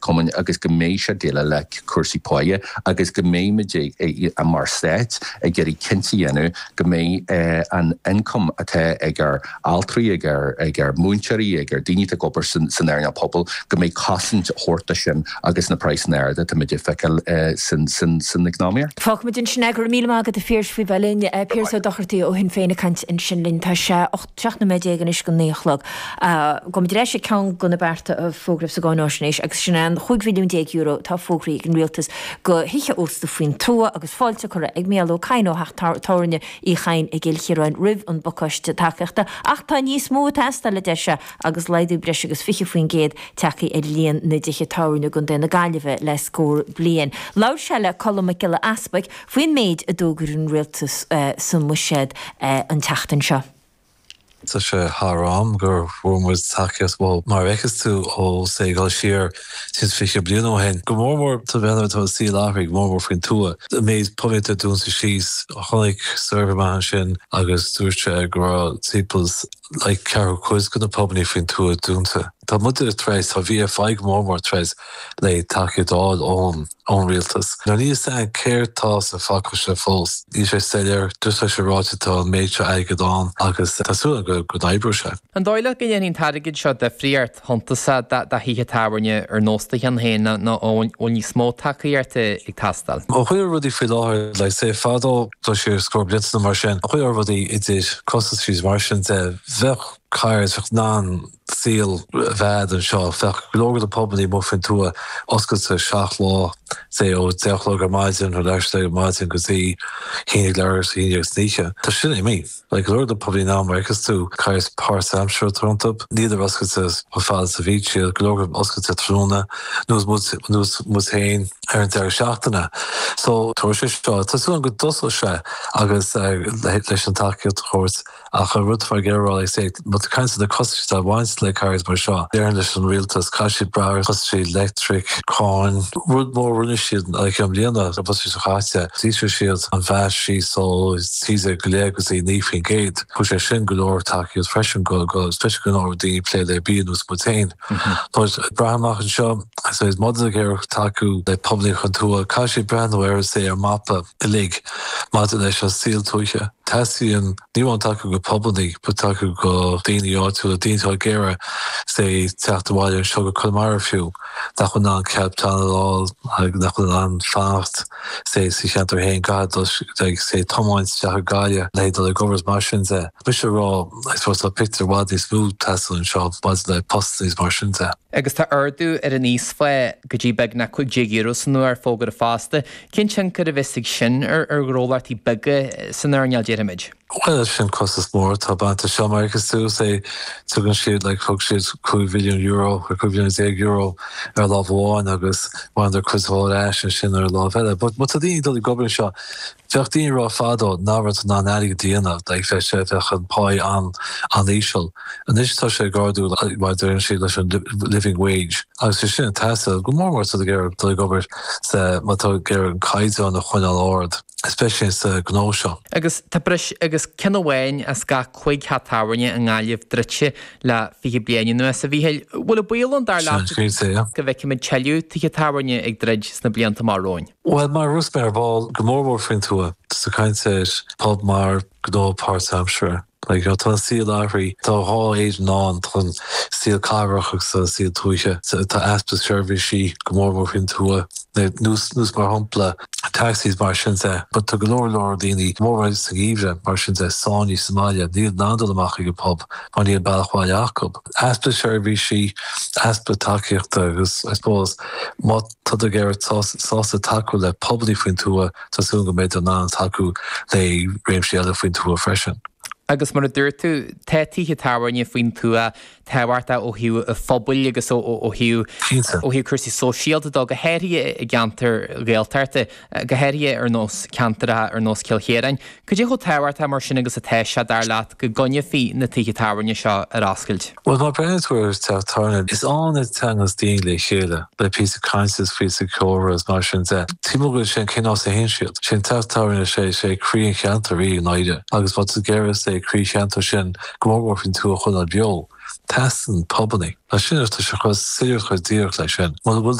Cumainn agus go mbeidh sé ag déileáil le cúrsaí páighe agus go mbeidh muid, mar Stát, ag iarraidh cinnte a dhéanamh go mbeidh an t-ioncam atá ag ár altraí, ag ár múinteoirí, ag ár daoine atá ag obair san earnáil pobail, go mbeidh cosaint a thabhairt do sin agus na praghsanna arda atá muid ag feiceáil san eacnamaíocht. Fágfaidh muid ansin é. Go raibh míle maith agat, a Phiarais, faoi bheith linn. Piaras Ó Dochartaigh ó Shinn Féin ag caint ansin linn. Tá sé. 17 nóiméad anois go naoi a chlog. Gabhfaidh muid ar ais ag ceann de na bearta a fógraíodh sa gcáináisnéis, agus sin é an €15 mhilliún atá fógraithe ag an Rialtas do thithe ósta faoin tuath agus fáilte curtha ag Micheál Ó Cadhain ó theach tábhairne Uí Chadhain i gCill Chiaráin roimh an bpacáiste tacaíochta. Ach tá níos mó ag teastáil, a deir sé, agus laghdú breis agus 20% tagtha ar líon na dtithe tábhairne i gContae na Gaillimhe le scór bliain. Labhair sé le Colm Mac Giolla Easbuic, faoin méid a d'fhógair an Rialtas sa mBuiséad an tseachtain seo. Tá sé thar am gur bhfuair muid tacaíocht mhór mar a fheiceas tú ó say ag goil siar os cionn 20 bliain ó shin, go mór mór mar atá an saol athraithe, go mór mór faoin tuath. An méid pubannaí atá dúnta síos, tháinig suirbhé amach ansin agus dúirt sé go raibh timpeall like ceathrú cuid de na pubannaí faoin tuath dúnta. Tá muide tar éis, tá VFI go mór mór tar éis le tacaíocht a fháil ón. ón Rialtas. Now níl a fhios againn céard tá sa phacáiste fós. Níl sé soiléir. Just tá sé ráite tá an méid seo airgead ann agus tá súil againn go n-oibreoidh sé. An dóigh leat go ndéanfaidh an t-airgead seo difríocht shuntasai do thithe tábhairne ar nós do cheann féin nó an bhfuil níos mó tacaíochta ag teastáil? Ó thaobh rudaí faoi láthair, like, say fadó, dul siar scór blianta nó mar sin, ó thaobh rudaí idir costas thríd is mar sin de, bheadh cards, bheadh nan, saol i bhfad anseo. Bheadh go leor de na pubannaí amuigh faoin tuath oscailte seacht lá, say, ó deich a chlog ar maidin, nó leathuair tar éis a deich ar maidin go dtí haon déag, leathuair tar éis a haon déag san oíche. Tá sin imithe. Like, go leor de na pubannaí now, mar a fheiceas tú, caithfidh páirtaimseartha iontu. Níl siad oscailte chomh fada is a bhíodh siad. Go leor oscailte tráthnóna, ar nós muid féin ar an deireadh seachtaine. So, tá sé seo, tá súil agam go dtosóidh sé agus leis an tacaíocht a thabhairt. Ach an rud atá muid ag iarraidh is é, má tá caint ar na costais atá ag baint le cairdis mar seo, déarfainn leis an rialtas, caithfidh siad breathnú ar chostais leictric, cáin. Rud mór a rinne siad i mbliana, an bhliain seo caite, d'ísligh siad an VAT síos ó 13 go leith go dtí 9 faoin gcéad. Thug sé sin go leor tacaíocht freisin go speisialta nuair atá daoine ag plé le bia ar nós muid féin. Tá siad ag breathnú amach anseo, is é má tá muid ag iarraidh tacú le pubannaí faoin tuath, caithfidh siad breathnú ar an saol ar mhapa. uilig maidir leis an saol tuaithe. Teastaíonn, ní amháin tacú go pubannaí, but tacú go daoine áitiúla, daoine atá ag iarraidh, say, teacht abhaile anseo go Conamara fiú, nach bhfuil in ann cead pleanála a fháil, like, nach bhfuil in ann fanacht, say, sa cheantar féin, gcaithfidh dul, like, say, tiomáint isteach go Gaillimh le haghaidh dul ag obair is mar sin de. Mise a rá, I suppose, tá pictiúr i bhfad níos mó ag teastáil anseo maidir le postannaí is mar sin de. Agus tá ardú ar an íosphá go dtí beagnach €15 san uair fógartha fosta Cén tionchar a bheas aige sin ar ghnólachtaí beaga san earnáil, déarfaimid? Bhuel, sin costas mór atá bainte as seo, mar a fheiceas tú. Is é, tugann siad, like, thug siad cúig mhilliún euro, or cúig mhilliún déag euro ar láimh amháin agus bhaineadar cuid mhór ar ais ansin ar an láimh eile. But, má tá daoine ag dul ag obair anseo, bhíodh daoine ag rá fadó nach raibh tú in ann airgead a dhéanamh, like, bheadh sé, bheadh an páí an-íseal. Anois tá sé ag ardú, mar a deireann siad, leis an living wage. agus é sin ag teastáil go mór mór má tá tú ag iarraidh dul ag obair sa má tá tú ag iarraidh an caighdeán a choinneáil ard, especially sa gnó seo. Agus tá breis agus ceann amháin as gach cúig theach tábhairne i nGaillimh druidte le fiche bliain anuas. A Mhícheáil, bhfuil an baol ann, dar leat, go bhfeicfimid tuilleadh tithe tábhairne ag druid sna blianta amach romhainn? Bhuel, mar a dúirt mé ar ball, go mór mór faoin tuath, tá tú ag caint ar phub mar. gnó páirtaimseartha. Tá an saol athraithe. Tá dhá Éirinn ann, tá an saol cathrach agus tá an saol tuaithe. Tá easpa seirbhísí, go mór mór faoin tuath, nós mar shampla taxis is mar sin de. Tá go leor leor daoine go mór mór sa gheimhreadh mar sin de, sáinnithe sa mbaile, níl in ann dul amach ag an bpub mar níl bealach abhaile acu. Easpa seirbhísí, easpa tacaíochta agus I suppose má. Tádar ag iarraidh, sásta tacú le pubannaí faoin tuath, tá súil go mbeidh siad in ann tacú le réimsí eile faoin tuath freisin. Agus mar a dúirt tú, tá tithe tábhairne faoin tuath tábhachtach ó thaobh phobail agus ó thaobh cúrsaí sóisialta de, go háirithe i gceantair Ghaeltachta. go háirithe ar nós ceantair atá ar nós Chill Chiaráin. Cad é chomh tábhachtach mar sin agus atá sé, dar leat, go gcoinneofaí na tithe tábhairne seo ar oscailt? Bhuel, má bhreathnaíonn tú ar teach tábhairne, is ann a thagas daoine le chéile, le píosa cainte is píosa comhrá is mar sin de. Tuigeann muid uilig sin, cén nós a théann siad? Sin teach tábhairne, is é is é croí an cheantair í, i ndáiríre, agus má tá tú ag iarraidh, say, croí an cheantair sin go mór mór faoin tuath a choinneáil beo. Teastaíonn pubannaí. Ansin, is tá sé chomh soiléir is chomh díreach leis sin. Muna bhfuil,